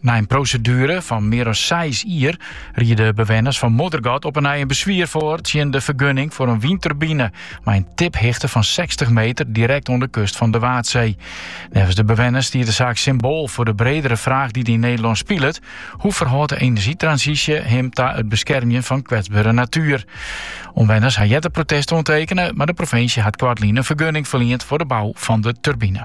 Nei in proseduere fan mear as seis jier riede de bewenners fan Moddergat op 'e nij in beswier foar tsjin de fergunning foar in wynturbine mei in tiphichte fan sechstich meter direkt oan de kust fan de Waadsee. Neffens de bewenners stiet de saak symboal foar de bredere fraach dy't yn Nederlân spilet, hoe ferhâldt de enerzjytransysje him ta it beskermjen fan kwetsbere natuer? Omwenners ha earder protest oantekene, mar de provinsje hat koartlyn in fergunning ferliend foar de bou fan de turbine.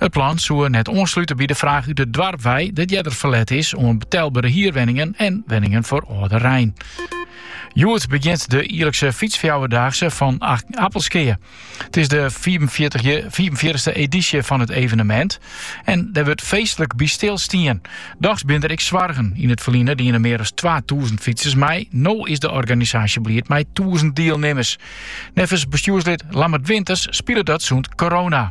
It plan soe net oanslute by de fraach út it doarp wei, dat earder ferlet is oan betelbere hierwenningen en wenningen foar âlderein. Hjoed begjint de jierlikse Fytsfjouwerdaagse fan Appelskea. It is de fiifenfjirtichste edysje fan it evenemint en dêr wurdt feestlik by stilstien. Dochs binne der ek soargen. Yn it ferline diene mear as twatûzen fytsers mei. No is de organisaasje bliid mei tûzen dielnimmers. Neffens bestjoerslid Lammert Winters spilet dat sûnt korona.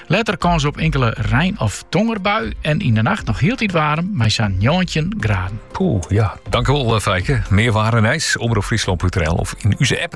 Letter kâns op inkele rein of tongerbui en yn de nacht noch hieltyd waarm mei sa'n njoggentjin graden. Poeh, ja. Tankewol eh, Fijke. Mear waar en nijs, omropfryslan.nl of yn ús app.